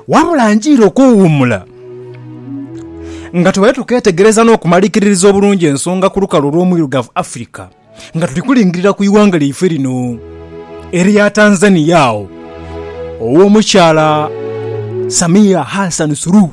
Wabula njiire okuwuumula nga tubaire tukeetegereza n'okumalikiririza obulungi ensonga ku lukalu olw'omwirugavu Africa nga tuli kulingirira ku ighanga lyaife lino erya Tanzania agho ow'omukyala Samia Hassan Suluhu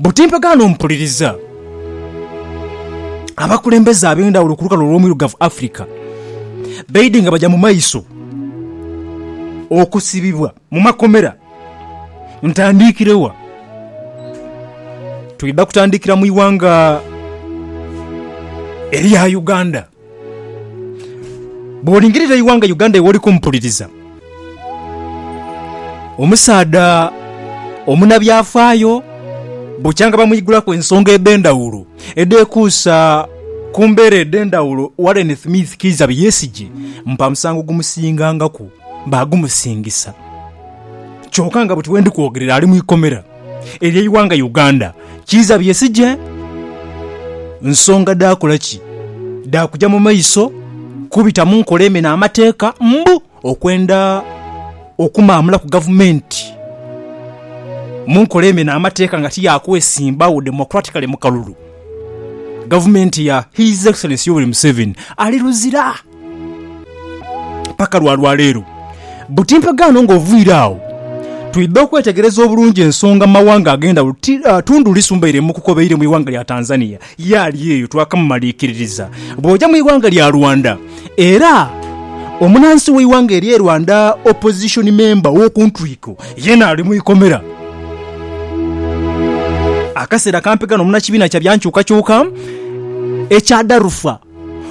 Buti mpagaana omupuliriza abakulembeze ab'endhawulo ku lukalu olw'omwirugavu Africa baidhi nga baja mu maiso okusibibwa mu makomera. Ntandikire wa? Twidha kutandikira mu ighanga erya Uganda. Bw'olingirira eighanga Uganda iwe oli kumpuliriza, omusaadha omunabyafaayo bukyanga bamwigulaku ensonga edh'endhaghulo edhekuusa ku mbeera edh'endhaghulo, Warren Thmith Kiiza Byesigye mpamusango gumusingangaku baagumusingisa kyoka nga buti we ndi kwogerera ali mu ikomera. elyo eighanga Uganda kiiza byesigye nsonga dha kola ki? Dha kuja mu maiso kubita mu nkola emena amateeka mbu okwenda okumaamula ku gavumenti mu nkola emena amateeka nga ti ya kwesimbagho democratically mu kalulu gavumenti ya His Excellency Yoweri Museveni ali luzira. paka lwa lwaleero. Buti mpagaano nga oviire agho twidha okwetegereza obulungi ensonga mawanga agendhawulo ti Tundu Lissu mbaire mukukobeire mu ighanga lya Tanzania yaali eyo twakamumalikiririza. Bwoja mu ighanga lya Rwanda era omunansi we ighanga erye Rwanda opposition member wokuntwiko yena ali mu ikomera. Akaseera kampi ghano munakibiina kya byankyukakyuka ekya Darufa,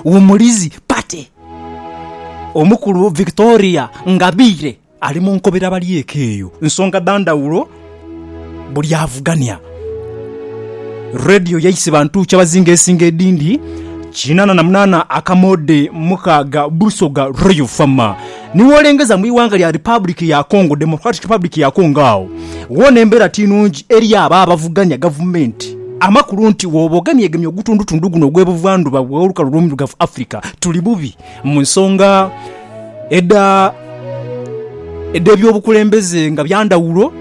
Wumulizi Party, Omukulu Victoria Ngabire ali mu nkobera bali eka eyo nsonga dha ndhawulo buli avugania. Radio yaise bantu kyabazinga esinga edhindi kinana na munana akamoodhe mukaaga Busoga Royal Farmer. Ni wolengeza mu ighanga lya Republic ya Congo, Democratic Republic ya Congo, agho ghona embeera ti nungi eri abo abavuganya gavumenti. Amakulu nti bwoba ogemyegemye ogutundutundu guno ogw'ebuvandhuba bw'olukalu olw'omuirugavu Africa, tuli bubi mu nsonga edha edh'ebyobukulembeze nga bya ndhawulo,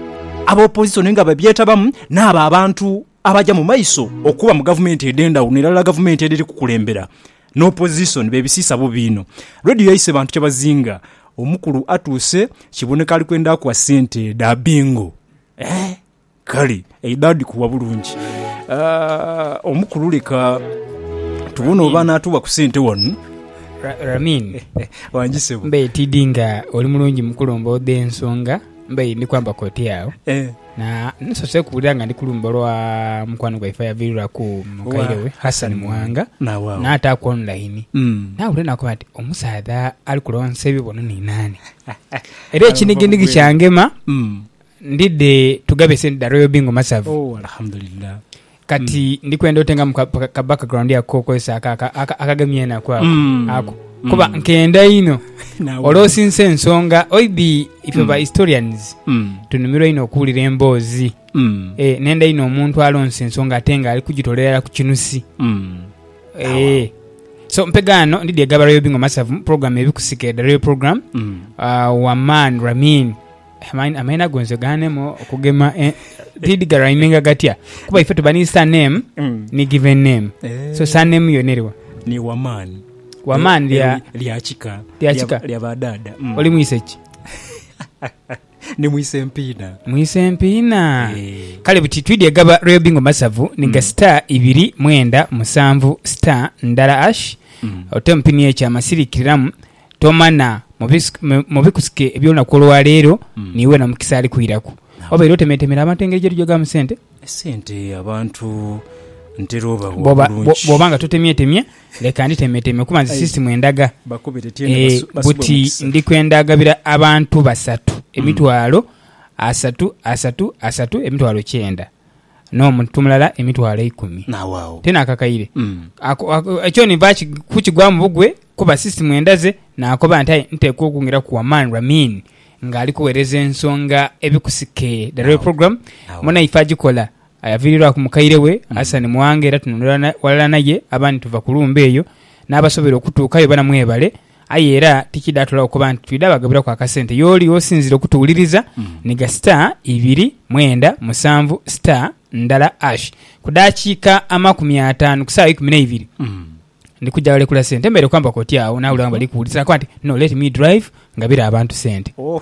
aba opozisoni nga babyetabamu n'abo abantu Abaja mu maiso okuba mu gavumenti edh'endhawulo n'erala gavumenti edhiri kukulembera n'opozisoni bebisiisa bubi inho. Radio yaise bantu kyabazinga. Omukulu atuuse kiboneka ali kwenda kuwa sente dha bingo. Eeh! Kale eidho adhikuwa bulungi. Aah omukulu leka tubone oba anaatuwa ku sente wano. Ra, Ramin. Wangi ssebo. Mbaire tidhi nga oli mulungi mukulu omboodhe ensonga mbaire ndi kwambaku oti agho. Eeh. Na, nsoose kuwulira nga ndi ku luyimba olwa mukwano gwaife ayaviiriraku mukaire we Hassan Muwanga, n'ataaku online. Naawulira n'akoba nti, Omusaadha ali kulonsa ebibono ni naani? Era ekiniginigi kyangema, ndidhe tughabe sente dha Royal Bingo Masavu. Kati ndi kwenda otengamu ka, ka background ako kokozesa ako akagemya enaku ako, mm. ako. Mm. kuba nkenda inho olwosinsa ensonga oibi ife mm. ba historians mm. tunumirwa inho okuwulira emboozi mm. e, nenda inho omuntu alonsa ensonga ate nga ali kugitolerera ku kinusi mm. e, so mpegaano ndidi egabarayo bingo masavu program ebikusika edarayo program mm. uh, waman ramin Amaina go nze ganema okugema eh, did garaiminga gatya kuba ife tuba ni surname mm. ni given name so eh. surname yona eriwa ni waman waman lya lya kika lya kika lya badada mm. oli mwise ki ni mwise empina mwise empina eh. kale buti twidi egaba royal bingo masavu ni ga mm. star ibiri mwenda musanvu star ndala ash mm. ote mpini ekya masirikiramu Tomana mu bikusike eby'olunaku olwaleero n'iwe na mukisa ali kwiraku. Obaire otemeetemera abantu engeri gye tujogamu sente? Esente abantu ntera obawa bulungi. Bw'oba nga totemyetemye, leka nditemeetemye kuba nze sisitimu endaga buti ndi kwendagabira abantu basatu emitwalo asatu asatu asatu, emitwalo kyenda. n'omuntu mulala emitwalo eikumi. N'awaagho. Ti naakakaire. Kyoni va kukigwamu bugwe kuba si simu endaze, naakoba nti, Aye nteekwa okwongeraku ku Aman Ramin ng'ali kugheereza ensonga ebikusike The Royal Program. Munaife agikola yaviiriirwaku mukaire we Hassan Mwanga era tunula ghalala naye abandi tuva ku lumbe eyo. N'abasobeire okutuukayo bana mwebale. Aye era tikidhaatulagho kuba nti twidha bagabiraku akasente. Y'oli osinzire okutuwuliriza ni gha star ibiri mwenda musanvu star ndala ash. Ku dakiika amakumi ataanu ku saawa ikumi n'eibiri ndi kuja ghalekula sente. Mbaire kwambaku oti agho naawulira nga bali kuwuliriza nakoba nti no let me drive ngabire abantu sente. Oh.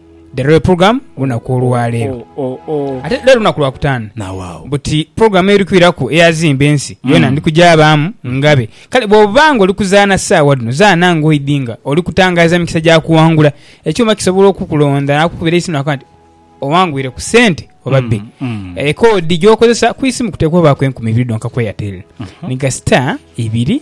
The Royal Program olunaku olwaleero. Ate leero lunaku lwa kutaanu. Buti pulogulaamu eri kwiraku eya Zimba Ensi yoona mm. ndi kugyabaamu ngabe. Kale bw'oba ng'oli kuzaana ssaawa dhino, zaana ng'oidhi nga oli kutangaaza mikisa gya kuwangula. Ekyuma kisobola okukulonda n'akukubira eisimu n'akoba nti owangwire ku ssente oba mm, bbi. Mm. Ekoodi eh, gy'okozesa ku isimu kuteekwa obaako enkumi ibiri dhonka ku Airtel. Mm-hmm. Ni gasita ibiri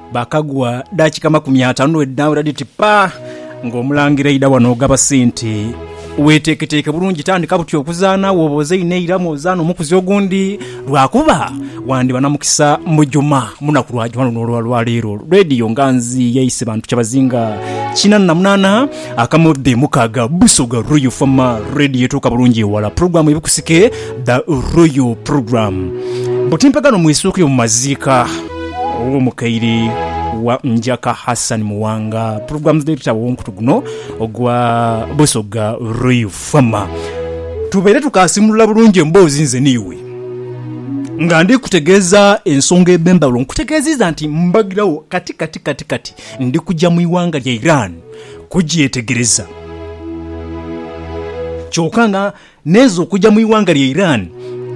Bhakagwa daakika makumi ataanu n'edhaawira dhiti ppa nga Omulangira aidha wano ogaba sente. Weeteeketeeke bulungi tandika buti okuzaana wooba ozaine eira mw'ozaana omukuzi ogundi lwakuba wandiba na mukisa mujuma mu lunaku lwa juma luno olwa lwaleero. Leediyo Nganzi yaise bantu kyabazinga kinaana na munaana akamodhi mukaaga Busoga Royal Farmer Radio etuuka bulungi ewala. Pulogulaamu Ebikusike The Royal Program. Butimpagano mwisuuke mu maziika. ow'omukaire wa Njaka Hassan Muwanga pulogulaamu dh'ebitabo ow'omukutu guno ogwa Busoga Royal Fama. Tubeire tukaasimulula bulungi emboozi nze n'iwe nga ndi kutegeeza ensonga edh'endhawulo. Nkutegeeziiza nti mbagirawo kati kati kati kati ndi kuja mu ighanga lya Iran kugyetegereza kyoka nga N'ezo okuja mu ighanga lya Iran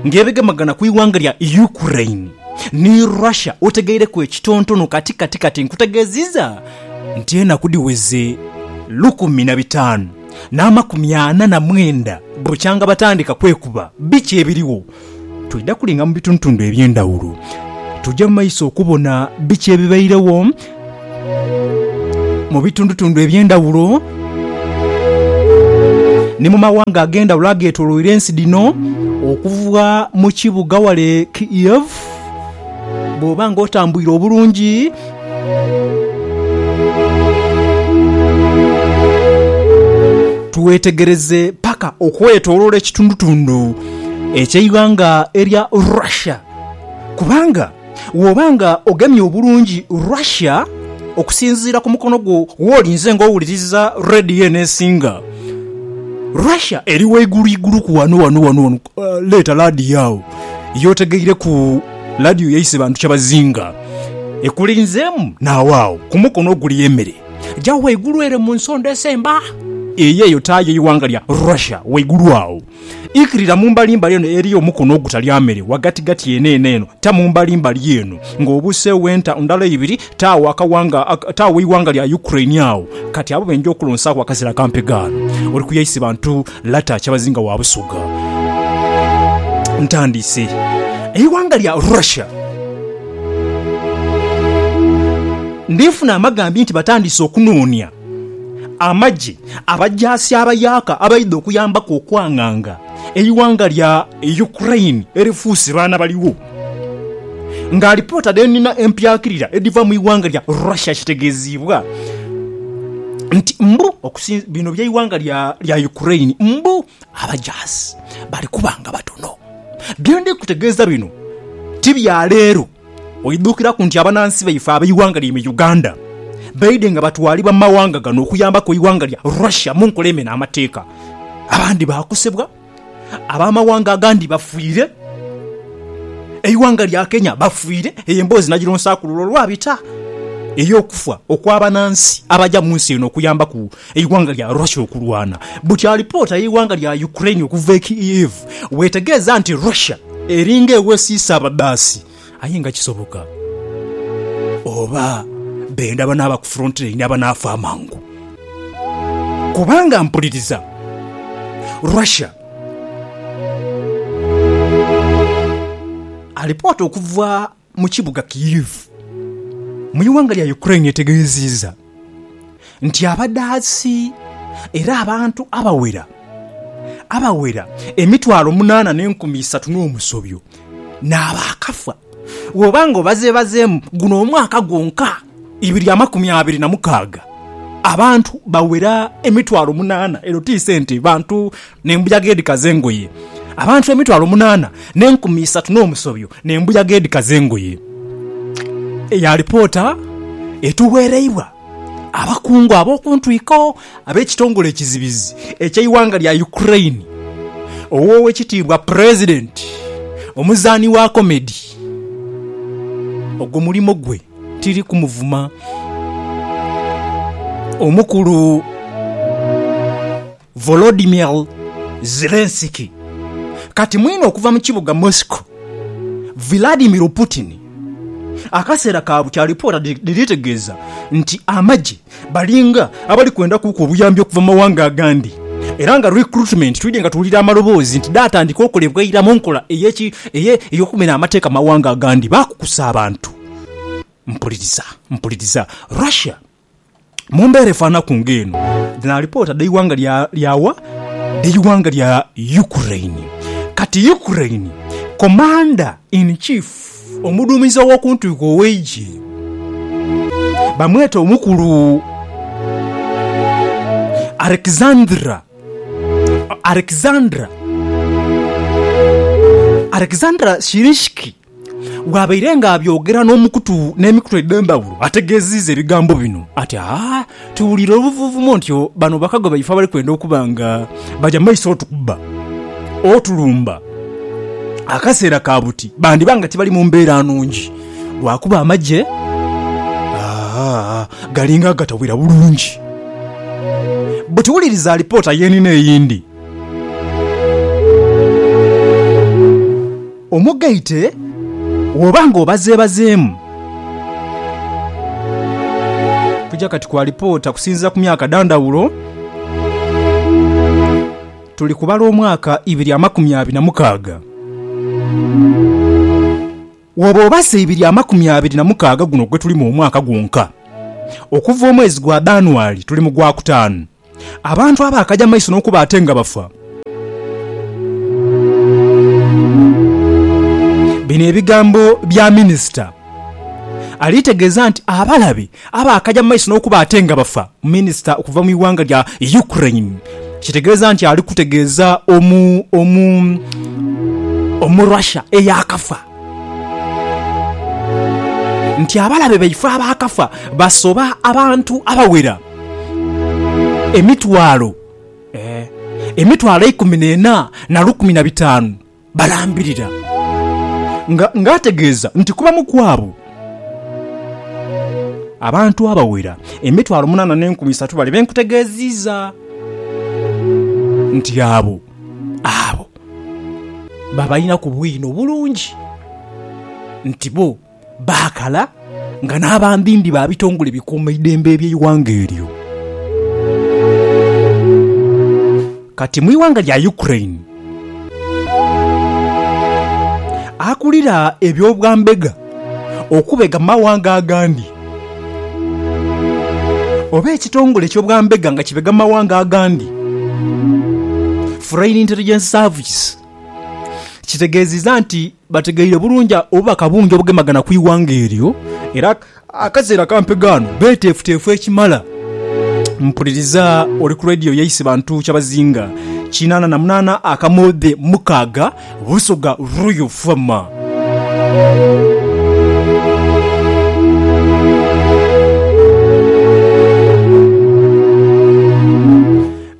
ng'ebegemagana ku ighanga lya Ukraine ni Russia otegeireku ekitontono kati kati kati nkutegeziza nti enaku dhiweze lukumi na bitanu n'amakumi ana na mwenda bukyanga batandika kwekuba biki ebiriwo Twidha kulinga mu bitundhutundhu eby'endhaghulo, tuja mu maiso okubona biki ebibairegho mu bitundhutundhu eby'endhaghulo ni mu maghanga ag'endhaghulo agetoloire ensi dhino okuva mu kibuga ghale Kiev bwoba nga otambuire obulungi. Twetegereze paka okwetolola ekitundutundu eky'eighanga erya Russia, kubanga bw'oba nga ogemye obulungi Russia okusinziira ku mukono gwo w'oli nze ng'owuliriza radiyo eno esinga, Russia eri waiguluiguluku wano wano wano wano. Leeta radiyo agho y'otegeireku. Ladiyo yaise bantu kyabazinga. Ekulinzeemu naawo agho ku mukono oguli emere gya ghaigulu ere mu nsonda esemba. Eyo eyo taa y'eighanga lya Russia ghaigulu agho. Ikirira mu mbalimbali eno eri omukono ogutalya mere, ghagatigati eno eno eno taa mu mbalimbali eno nga obuuseegho enta ndala ibiri taa agho akawanga taa gh'eighanga lya Ukraine agho. Kati abo beenja okulonsaaku akazira ka mpegaano, oli ku yaise bantu Lata kyabazinga wa Busoga. Ntandiise. Eighanga lya Russia ndinfuna amagambi nti batandiise okunoonia amagye abajaasi abayaaka abaidha okuyambaku okwanganga eighanga lya Ukraine erifuuse baana baligho. nga alipoota dhe nina empyakirira edhiva mu ighanga lya Russia kitegeeziibwa nti mbu okusinzi bino by'eighanga lya Ukraine mbu abajaasi bali kuba nga batono. Bye ndi kutegeeza bino ti bya leero, oidhukiraku nti abanansi baife ab'eighanga lyaime Uganda baidhe nga batwalibwa mu mawanga gano okuyambaku eighanga lya Russia mu nkola emena amateeka abandi baakosebwa. Ab'amawanga agandi bafiire, eighanga lya Kenya bafiire, eyo emboozi nagironsaaku lule olwabita, ey'okufa okw'abanansi abaja mu nsi eno okuyambaku eighanga lya Russia okulwana. Buti alipoota y'eighanga lya Ukraine okuva e Kyiv bw'etegeeza nti Russia eringa ewesiisa abadhaasi, Aye nga kisoboka oba benda banaaba ku frontilaini abanaafa amangu. Kubanga mpuliriza Russia Alipoota okuva mu kibuga Kyiv mu ighanga lya Ukraine etegeeziiza. nti abadhaasi era abantu abawera abawera emitwalo munaana n'enkumi isatu n'omusobyo nabaakafa. Bwoba nga obazebazeemu guno omwaka gwonka ibiri amakumi abiri na mukaaga, abantu bawera emitwalo munaana. Eno ti sente bantu n'embuyaga edhikaza engoye, abantu emitwalo munaana n'enkumi isatu n'omusobyo n'embuyaga edhikaza engoye. Eya lipoota etuweereibwa abakungu ab'oku ntwiko ab'ekitongole ekizibizi eky'eighanga lya Ukraine, ow'Owekitiibwa Pulezidenti, omuzaani wa komedi, ogwo mulimo gwe tiri kumuvuma, omukulu. Volodymyr Zelensky, kati mwine okuva mu kibuga Moscow, Vladimir Putin, akaseera ka bukya alipoota dhiri tegeeza nti amagye balinga abali kwenda kuuka obuyambi okuva mu mawanga agandi era nga recruitment twidhye nga tuwulira amaloboozi nti dhaatandika okolebwa eira mu nkola ey'okumira amateeka mu mawanga agandi baakukusa abantu. Mpuliriza, mpuliriza. Russia. Mu mbeera efaanaku ng'eno, dhino alipoota dh'eighanga lya wa? Dh'eighanga lya Ukraine. Kati Ukraine, Commander in Chief, omuduumizi ow'oku ntwiko ow'eigye, bamweta Omukulu Alexandra, Alexander, Alexander Syrskyi. Bwabaire nga abyogera n'omukutu n'emikutu edh'endhaghulo, ategeeziiza ebigambo bino ati, Aa! Tuwuliire obuvuuvumo nti bano bakago baife abali kwenda okuba nga baja mu maiso otukubba, otulumba. Akaseera ka buti bandiba nga tibali mu mbeera nungi, lwakuba amagye galinga agatawera bulungi. Buti wuliriza alipoota y'enina eyindi. Omugaite woba nga obazeebazeemu. Tuja kati ku alipoota kusinziira ku myaka dha ndhawulo. Tuli kubala omwaka ibiri amakumi abiri na mukaaga. Woba obaze ibiri amakumi abiri na mukaaga guno gwetulimu omwaka gwonka, okuva omwezi gwa Dhanuali tuli mu gwa kutaanu. Abantu abaakaja mu maiso n'okuba ate nga bafa. Bino ebigambo bya minisita ali tegeeza nti abalabe abaakaja mu maiso n'okuba ate nga bafa. Minisita okuva mu ighanga lya Ukraine kitegeeza nti ali kutegeeza omu omu omu Russia eyaakafa. nti abalabe baife abaakafa basoba abantu abawera emitwalo emitwalo eikumi n'ena na lukumi na bitaanu balambirira, ng'ategeeza nti ku bamu ku abo, abantu abawera emitwalo munaana n'enkumi isatu bali be nkutegeeziiza nti abo Abo babalinaku bwino bulungi nti bo baakala nga n'abambimbi ba bitongole bikuuma idembe eby'eighanga eryo. Kati mu ighanga lya Ukraine, akulira eby'obwambega, okubega mu mawanga agandi, oba ekitongole eky'obwambega nga kibega mu mawanga agandi, Foreign Intelligence Service, kitegeezizza nti bategeire bulungi obubaka bungi obugemagana ku ighanga eryo era akaseera ka mpegaano beeteefuteefu ekimala. Mpuliriza oli ku leediyo yaise bantu kyabazinga kinaana na munaana akamoodhe mukaaga Busoga Royal Farmer.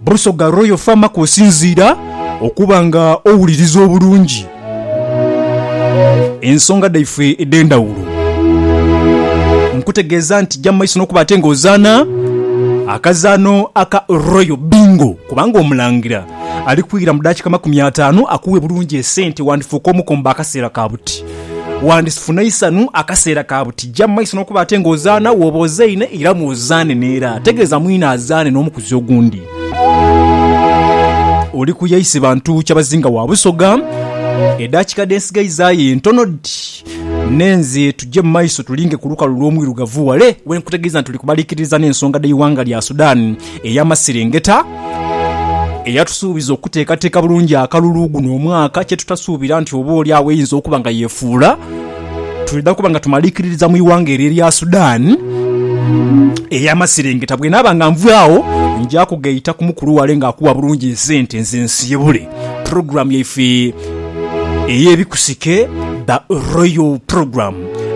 Busoga Royal Farmer kwosinziira okuba nga owuliriza obulungi ensonga dhaife edh'endhawulo, nkutegeeza nti ja mu maiso n'okuba ate ng'ozaana akazaano aka Royal Bingo kubanga Omulangira ali kwira mu daakika makumi ataanu akuwe bulungi esente wandifuuka omukombo akaseera ka buti. Wandifuna eisanhu akaseera ka buti. Ggya mu maiso n'okuba ate ng'ozaana wooba ozaine era mw'ozaane n'era. Tegeeza mwine azaane n'omukuzi ogundi. Oli ku ya ise bantu kyabazinga wa Busoga. Edaakika dhe nsigaizaayo entono dhi. Nenze tugye mu maiso tulinge ku lukalu lw'Omwirugavu wale we nkutegeeza nti tuli kubaliikiririza n'ensonga dh'eighanga lya Sudan. ey'amasiringita eyatusuubiza okuteekateeka bulungi akalulu guno omwaka kye tutasuubira nti oba oli agho eyinza okuba nga yefuula twidha kuba nga tumaliikiririza mu ighanga eryo erya Sudan ey'amasiringita. Bwenaaba nga nvaawo nja kugaita ku mukulu wale ng'akuwa bulungi esente nze nsiibule. Program yaife eyebikusike the royal program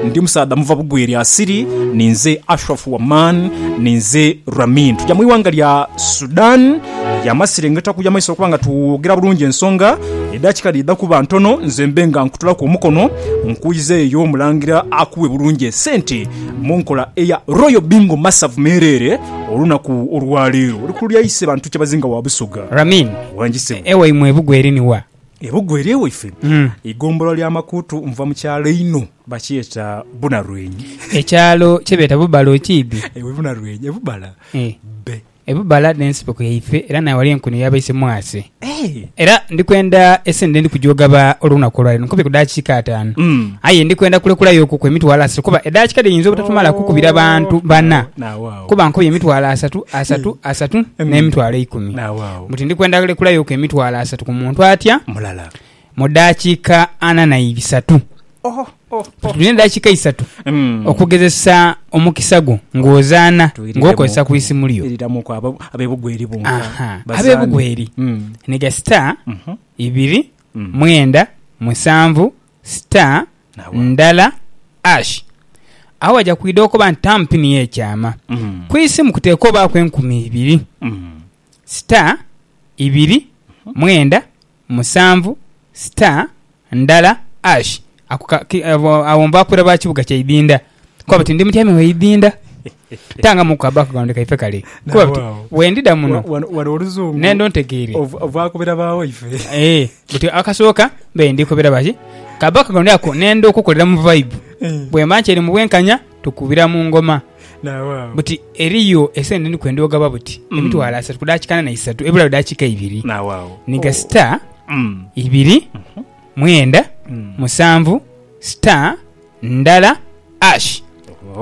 ndi musaadha muva bugwe lya siri ninze Ashraf Waman ninze Ramin tuja mwiwanga lya Sudan yamasirengeta kuja maiso lwakuba nga twogera bulungi ensonga edakika dhidha kuba ntono nze mbe nga nkutulaku omukono nkuiza eyo omulangira akuwe bulungi esente munkola eya royal bingo masavu merere olunaku olwaleero oli kululya ise bantu kyebazinga wa busoga. Ramin. Wangi sebo. Ewaimwe ebugu eri ni wa? Ebugu eri ewaife eigombolola lya Makuutu nva mu kyalo einho bakyeta Bunarwenyi. Ekyalo kyebeeta Bubala okiidhi? Ewe Bunarwenyi e Bubala bbe. E Bubala n'ensiko yaife era nayo wali enkuno yabaise mwase. Era ndi kwenda esente dhendi kujoogaba olw'olunaku olwaleero nkubye ku dakiika ataanu aye ndi kwenda kulekulayokuku emitwalo asatu kuba edakiika dhiyinza obutatumala kukubira bantu bana. Kuba nkubye emitwalo asatu, asatu, asatu, n'emitwalo eikumi. Buti ndi kwenda lekulayoku emitwalo asatu ku muntu atya mu daakiika ana na ibisatu. Tulina edaakiika isatu okugezesa omukisa gwo ng'ozaana ng'okozesa ku isimu lyo. Ab'ebugweri ni ga sita ibiri mwenda musanvu Star ndala ash agho waja kwidha okoba nti taamu pini yo ekyama. Ku isimu kuteekwa obaaku enkumi ibiri, star ibiri mwenda musanvu star ndala ash. Agho nva ku iraba kibuga kyaidhindha. Kuba buti ndi mutyaime w'eidinda, tangamuku ka background kaife kale. Kuba buti bwendidha muno n'endho ntegeire. Ee, buti akasooka mbaire ndi kubira baki ka background ako n'endha okukolera mu vibe. Bwemba nkyali mu bwenkanya tukubira mu ngoma. Buti eriyo esente ndi kwenda ogaba buti emitwalo asatu ku daakika ndhala isatu ebulagho daakika ibiri. Ni ga star ibiri mwenda musanvu star. ndala ash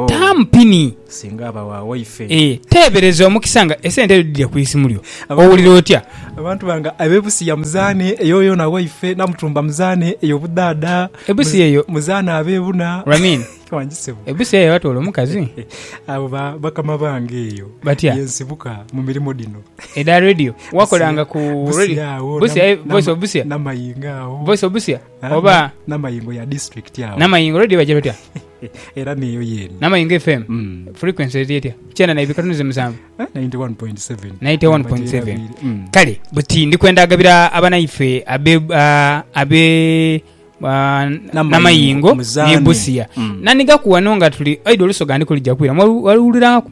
tamu pini singa aba wa waife eh, teebereza omukisa nga esente edho dhidhira ku isimu lyo owulira otya? Abantu bange abe Busia muzaane eyo yona waife, Namutumba muzaane eyo budhaadha, Ebusia eyo muzaane abe buna Ramin wangi sebo ebusia eyo watoola omukazi abo ba bakama bange eyo Batya? ye nsibuka mu mirimo dhino edha radio wakolanga ku radio Busia agho, Busia, eh, nam- voice of nam- Busia, Namayingo agho. voice of Busia. oba namayingo ya district awo namayingo radio bagira batya era neyo yeri namayingo fm mm. frequency eri etya kyenda naibiri katunuze musanvu 91.7 eh, 91.7 mm. kale buti ndi kwenda agabira abanaife abe uh, abe uh, namayingo nebusiya mm. nanigakuwano nga tuli aidha olusoga ndi kulijakwira waliwulirangaku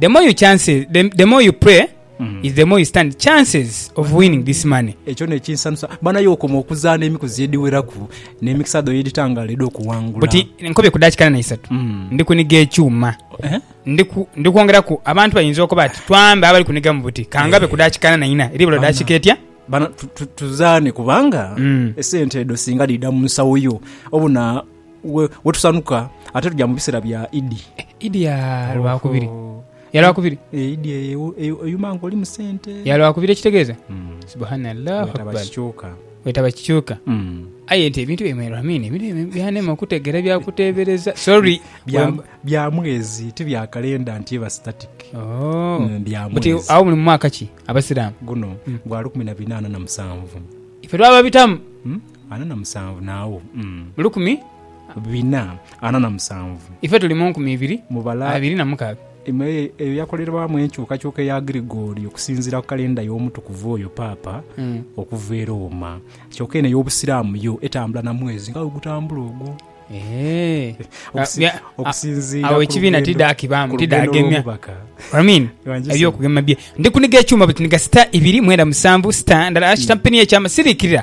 the more you chances the, the more you pray mm. is the more you stand chances of winning this money ekyo nekinsanusa bana yokoma okuzaana emikuzi ediweraku nemikisa dho yeditangala edi okuwangula buti nkobye kudakikana naisatu mm. ndi kuniga ekyuma eh? ndi kwongeraku abantu bayinza okuba ati twambe abali kuniga mu buti kangabe eh. kudakikana naina eri bula dakika etya tuzaane kubanga mm. esente edo singa dida mu nsawo yo obuna wetusanuka ate tuja mubisera bya idi. Idi ya lwakubiri. Oho. Ya lwakubiri. E, idi eyo eyuma nga oli musente. Ya lwakubiri ekitegeza. Mm. Subhanallah. Wetaba kikyuka. Wetaba kikyuka. Mm. Aye nti ebintu bye mwero amini ebintu bye byanema okutegera bya kutebereza. Sorry. Bya bya mwezi ti bya kalenda nti eba static. Oh. Mm, bya mwezi. Buti awo muli mwaka ki abasiramu. Guno mm. gwa 18 na musanvu. Ife twaba bitamu. Mm. Ana na musanvu nawo mm. Mu lukumi. Bina ana na musanvu. Ife tuli mu nkumi ibiri Mubala. abiri na mukaaga. Imwe e, eyo yakolerwamu enkyukakyuka eya Gregorio okusinziira ku kalenda y'omutukuvu oyo Paapa Mm. okuva e Rooma. Kyoka eno ey'Obusiraamu yo etambula na mwezi nga bwegutambula ogwo. Eh. Okusi- Bya- a- okusinziira awo ku ekibiina lugendo- tidaakibamu, ku lugendo tidaagemya. lw'omubaka. Amin. Ewanjise. Ebyokugema bye. Ndi kuniga ekyuma bwe tuniga sita ibiri mwenda musanvu sita ndala ashita mpini y'ekyama siriikirira.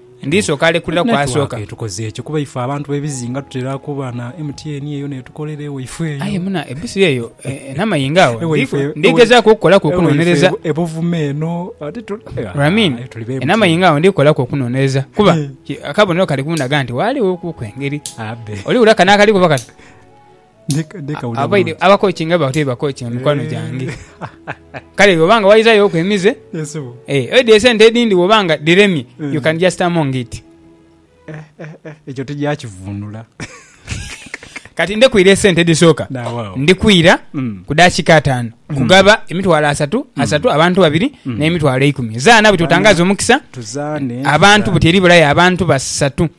Ndisooka alekulira ku asooka. Network etukoze ekyo kuba ife abantu bebizinga tutera kuba na MTN eyo netukolera ewaife eyo. Aye muna ebusiro eyo namayinga agho ndigezaku okukolaku okunonereza. E Buvuma eno ate tuli be MTN. Namayinga agho ndikolaku okunonereza kuba akabonero kali kundaga nti ghaligho ku engeri. Oli wulira kano akali kuba kati. abakokinga baba tibakokinga mikwano gyange kale bwobanga waizayoku emize eh, oidha esente edindi bwobanga diremye mm. you can just among it eh, eh, ekyo tijakivunula kati ndekwira esente edisooka ndikwira mm. ku dakika ataano mm. kugaba emitwalo asatu asatu abantu babiri nemitwalo eikumi zaana buti otangaza omukisa abantu buti eri bulaya abantu basatu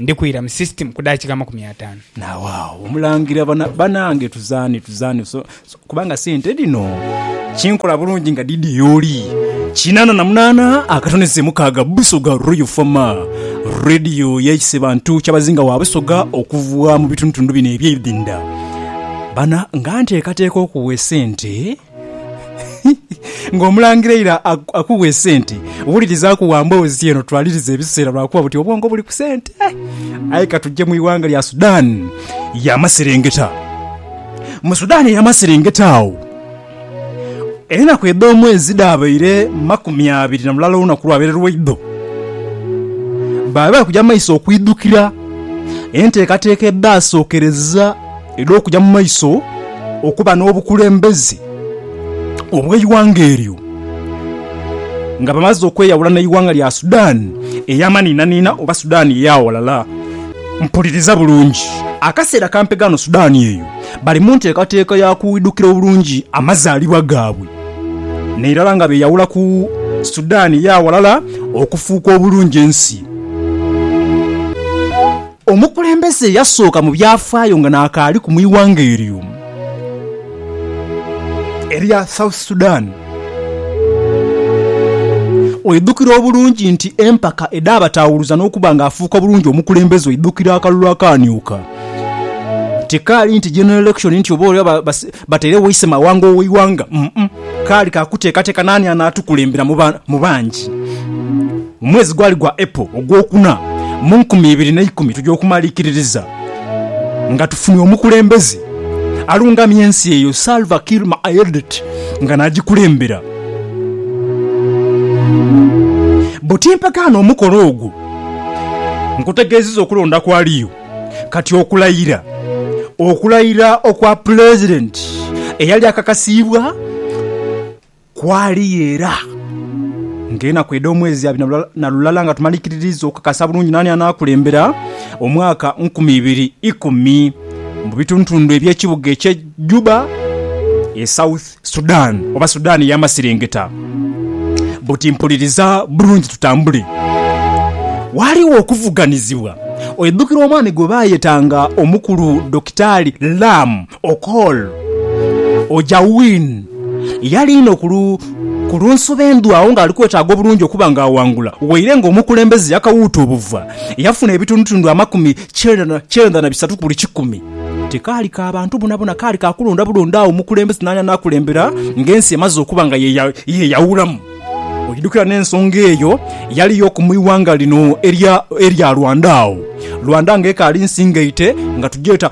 Ndi kwira mu system ku daakika amakumi ataanu. Naawagho omulangira bana, banange tuzaane, tuzaane so, so, kubanga sente dhino kinkola bulungi nga dhidhi y'oli. Kinaana na munaana akatonese mukaaga Busoga Royal Fama Radio yeise bantu kyabazinga wa Busoga okuva mu bitundutundu bino eby'ebidinda. Bana nga nteekateeka okuwa esente. Ng'omulangira eira akuwa esente, wulirizaaku wa mboozi eno twalirize ebiseera lwa kuba buti obwongo buli ku sente. Aye ka tuje mu ighanga lya Sudan y'amaserengeta. Mu Sudan ey'amaserengeta agho, enaku edh'omwezi dhaabaire makumi abiri na lulala olunaku lwabaire lwaidho. Baali bali kuja mu maiso okwidhukira enteekateeka edhaasookereza. era okuja mu maiso okuba n'obukulembeze obw'eighanga eryo nga bamaze okweyawula n'eighanga lya Sudan ey'amaniinaniina oba Sudan ey'aghalala. Mpuliriza bulungi. Akaseera kampe ghano Sudan eyo bali mu nteekateeka ya kuidhukira obulungi amazaalibwa gaabwe, n'irala nga beeyawula ku Sudan ey'aghalala okufuuka obulungi ensi. Omukulembeze eyasooka mu byafaayo nga n'akaaliku mu ighanga eryo erya South Sudan. Oidhukira obulungi nti empaka edhaabataawuluza n'okuba nga afuuka bulungi omukulembeze oidhukira akalulu akaamyuka. Tikaali nti general election nti oba oba batairegho ise mawanga ow'eighanga, umm, kaali ka kuteekateeka naani anaatukulembera mu bangi. Mu mwezi gwali gwa Apo ogwokuna mu nkumi ibiri n'eikumi tuja okumalikiririza nga tufunye omukulembeze alungamya ensi eyo Salva Kiir Mayardit nga nagikulembera. Bbo timpagaana omukolo ogwo nkutegeziza okulonda kwaliyo kati okulayira okulayira okwa pulezidenti eyali akakasiibwa Kwali era ng'enaku edh'omwezi abiri na lulala nga tumalikiririiza okukakasa bulungi naani anaakulembera omwaka nkumi ibiri ikumi mu bitundutundu eby'ekibuga eky'e Juba e South Sudan oba Sudan ey'amasirengeta. Buti mpuliriza bulungi tutambule. Waaliwo okuvuganizibwa. Oidhukira omwami gwe baayetanga omukulu Dokitaali Lam Okol. Ojawin yali inho ku lunsobi endhu agho ng'ali kwetaaga obulungi okuba ng'awangula. Waire ng'omukulembeze yakawuuta obuva, yafuna ebitundutundu amakumi kyenda na bisatu ku buli kikumi. Tikaali ka bantu bonabona, kaali ka kulonda bulonda agho omukulembeze n'ani anaakulembera ng'ensi emaze okuba nga yeeyawulamu. Oidhukira n'ensonga eyo yali y'oku mu ighanga lino erya Rwanda agho, Rwanda ng'ekaali nsi ngaite nga tugyeta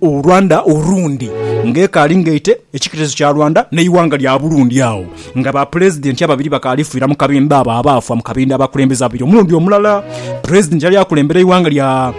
Rwanda Urundi ng'ekaali ngaite ekiketezo kya Rwanda n'eighanga lya Burundi agho nga bapulezidenti ababiri bakaali fiira mu kabindho abo abaafwa mu kabindho abakulembeze ababiri omulundi omulala pulezidenti eyali akulembera eighanga lya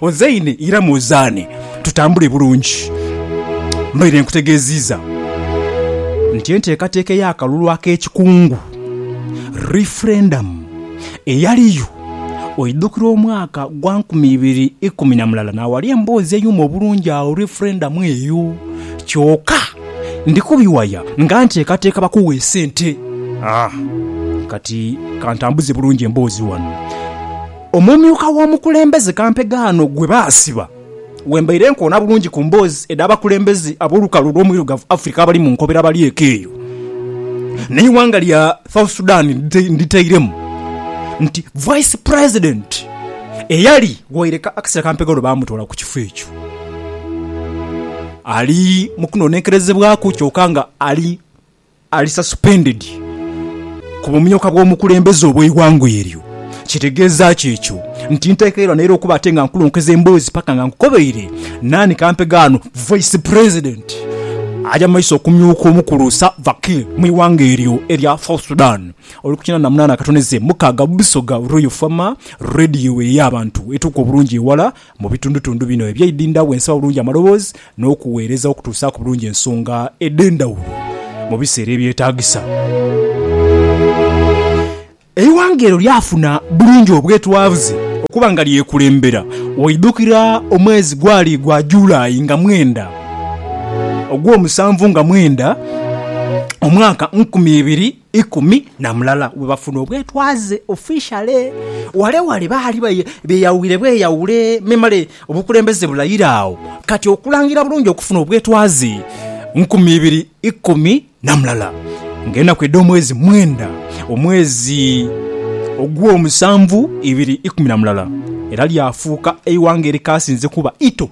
Ozaine ira muzaane tutambule bulungi. Mbaire nkutegeeziiza nti enteekateeka ey'akalulu ak'ekikungu, referendum, eyaliyo oidhukira omwaka gwa nkumi ibiri ikumi na mulala naawali emboozi eyuma obulungi agho referendum eyo kyoka ndi kubiwaya nga nteekateeka bakuwe esente. Kati kantambuze bulungi emboozi ghano. Omumyuka w'omukulembeze kampegaano gwe baasiba we mbaire nkoona bulungi ku mboozi edh'abakulembeze ab'olukalu olw'omwirugavu Africa abali mu nkobera balyeko eyo, n'eighanga lya South Sudan nditairemu, nti Vice President eyali waire akaseera kampegha lwe baamutoola ku kifo ekyo ali mu kunoonenkerezebwaku kyoka nga ali Ali suspended ku bumyuka bw'omukulembeze obw'eighanga eryo. Kitegeeza ki ekyo? Nti ntekeirwa naira okuba ate nga nkulonkeza emboozi paka nga nkukobeire naani kampeghe ghano Vice President aja mu maiso okumyuka omukulu Salva Kiir mu ighanga eryo erya South Sudan. Oli ku kinana munana akatoneze mukaaga Busoga Royal Farmer Radio eyo ey'abantu etuuka obulungi ewala. Mu bitundutundu bino ebyeidindha wensa obulungi amaloboozi n'okuweereza okutuusaaku bulungi ensonga edh'endhawulo mu biseera ebyetaagisa. Eighanga eryo lyafuna bulungi obwetwaze okuba nga lyekulembera. Waidhukira omwezi gwali gwa July nga mwenda, Ogwomusanvu nga mwenda, omwaka nkumi ibiri ikumi na mulala bwe bafuna obwetwaze ofishale. Ghale ghale baali beyawire bweyawire memale obukulembeze bulayira agho kati okulangira bulungi okufuna obwetwaze nkumi ibiri ikumi na mulala nga enaku edh'omwezi mwenda omwezi ogw'omusanvu ibiri ikumi na mulala era lyafuuka eighanga erikaasinze kuba ito.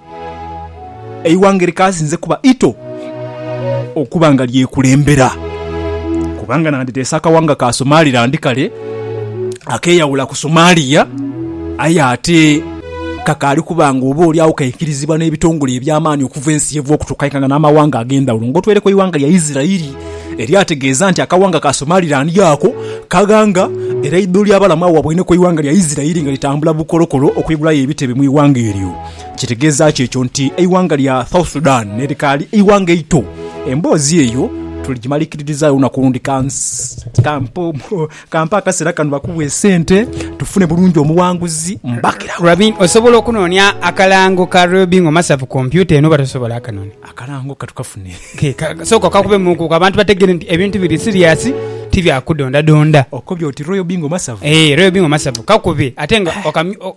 Eighanga likaasinze kuba ito okuba nga lyekulembera, kubanga nanditeese akawanga ka Somaliland kale akeeyawula ku Somalia aye ate kakaali kuba nga oba oli agho kaikirizibwa n'ebitongole eby'amaani okuva ensi yeva okutuuka aye nga n'amawanga ag'endhawulo. Ng'otweireku eighanga lya Isirairi eryategeeza nti akawanga ka Somaliland ako kaghanga era eidho ly'abalamu agho wabwaineku eighanga lya Isirairi nga litambula bukolokolo okwigulayo ebitebe mu ighanga eryo. Kitegeeza ki ekyo nti eighanga lya South Sudan nerikaali eighanga eito? Emboozi eyo tuligimalikiririzaayo olunaku olundi. Kampe akaseera kano bakuwe esente tufune bulungi omuwanguzi mbagirawo. Robin, osobola okunoonia akalango ka Robin Omasavu ku kompyuta eno oba tosobola? Akanoni. Akalango katukafune. Ke, ka, sooka okakubemuuku abantu bategeere nti ebintu biri siriasi, ti bya kudondadonda. Okobye oti Royal Bingo Masavu? Eeh, Royal Bingo Masavu. Kakube ate nga okamyu, o,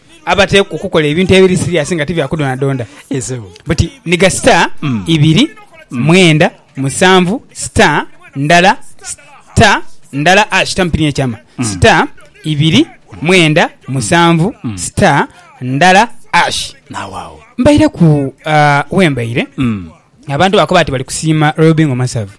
abateekwa okukola ebintu ebiri siriasi nga ti bya kudondadonda. But niga star mm. ibiri mm. mwenda musanvu star ndala star ndala ash tampini ekyama mm. star ibiri mwenda musanvu mm. star ndala ash nawawo mbaire ku uh, wembaire mm. Abantu baakoba ati bali kusiima Royal Bingo masavu.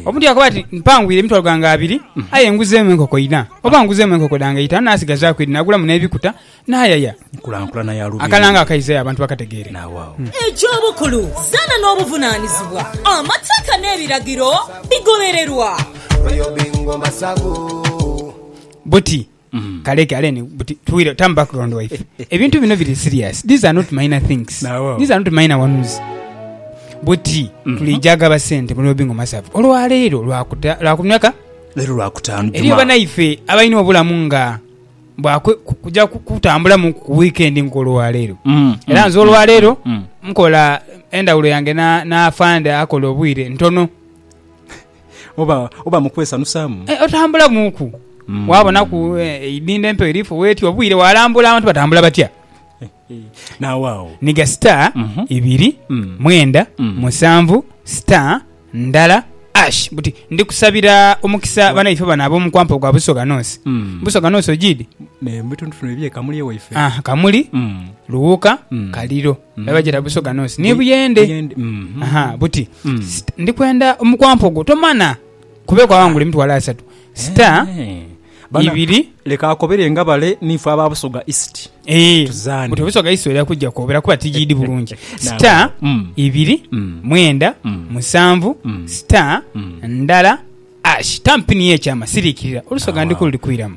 Omuntu yaakoba ati, Mpangwire emitwalo ghange abiri, aye nguzeemu enkoko inha, oba nguzeemu enkoko dhange itaanu naasigazaaku idhi naagulamu n'ebikuta naayaya. Nkulankulana ya Lubiri. Akalango akaize abantu bakategeere. Naawaawo. Egy'obukulu, zaana n'obuvunaanizibwa, amateeka n'ebiragiro bigobererwa. Royal Bingo masavu. Buti Kale kale ni buti tuwire turn background waife. Ebintu bino biri serious. These are not minor things. Nawo. These are not minor ones. Buti Mhm. tulija gaba sente mu lobingo masavu. Olwa leero lwa kuta lwa kumyaka Leero lwakutaano eriyo Jumaa. banaife abalina obulamu nga bwa kwe- ku- kuja ku- kutambulamu ku weekend nkolwa leero. Mm, Era mm, nze olwa leero mm. nkola endawulo yange na na afande akola obwire ntono. Oba, oba mu kwesanusaamu. E, otambula muuku. Mm. Waabonaku e, eidhindho empewo eri fo weeti obwire, waalambula abantu batambula batya. Naawe awo. Niga star, Mhm. ibiri, Mm. mwenda, Mm. musanvu, star, ndala, ash. Buti, ndi kusabira omukisa banaife bano ab'omu kwampa ogwa Busoga North. Mm. Busoga North ogiidi? Ne, mu bitundu fino eby'e Kamuli ewaife. Ah, Kamuli, Mm. Luwuka, Mm. Kaliro. Era bagyeta busoga nonsi ni buyende. Buyende, mhm. Aha, buti Mm. Sita, ndi kwenda omukwampogo tomana kuba ekwawangula emitwalo asatu sita Eh. Bana, ibiri leka akobere nga bale niife aba busoga east Eh, Tuzaane. buti obusoga iso era kujja kwobera kuba tigiidi bulungi sita Nalaba. Mm. ibiri Mm. mwenda Mm. musanvu Mm. sita Mm. ndala ash tampini yekyama siriikirira olusoga Awa. ndikulu likwiramu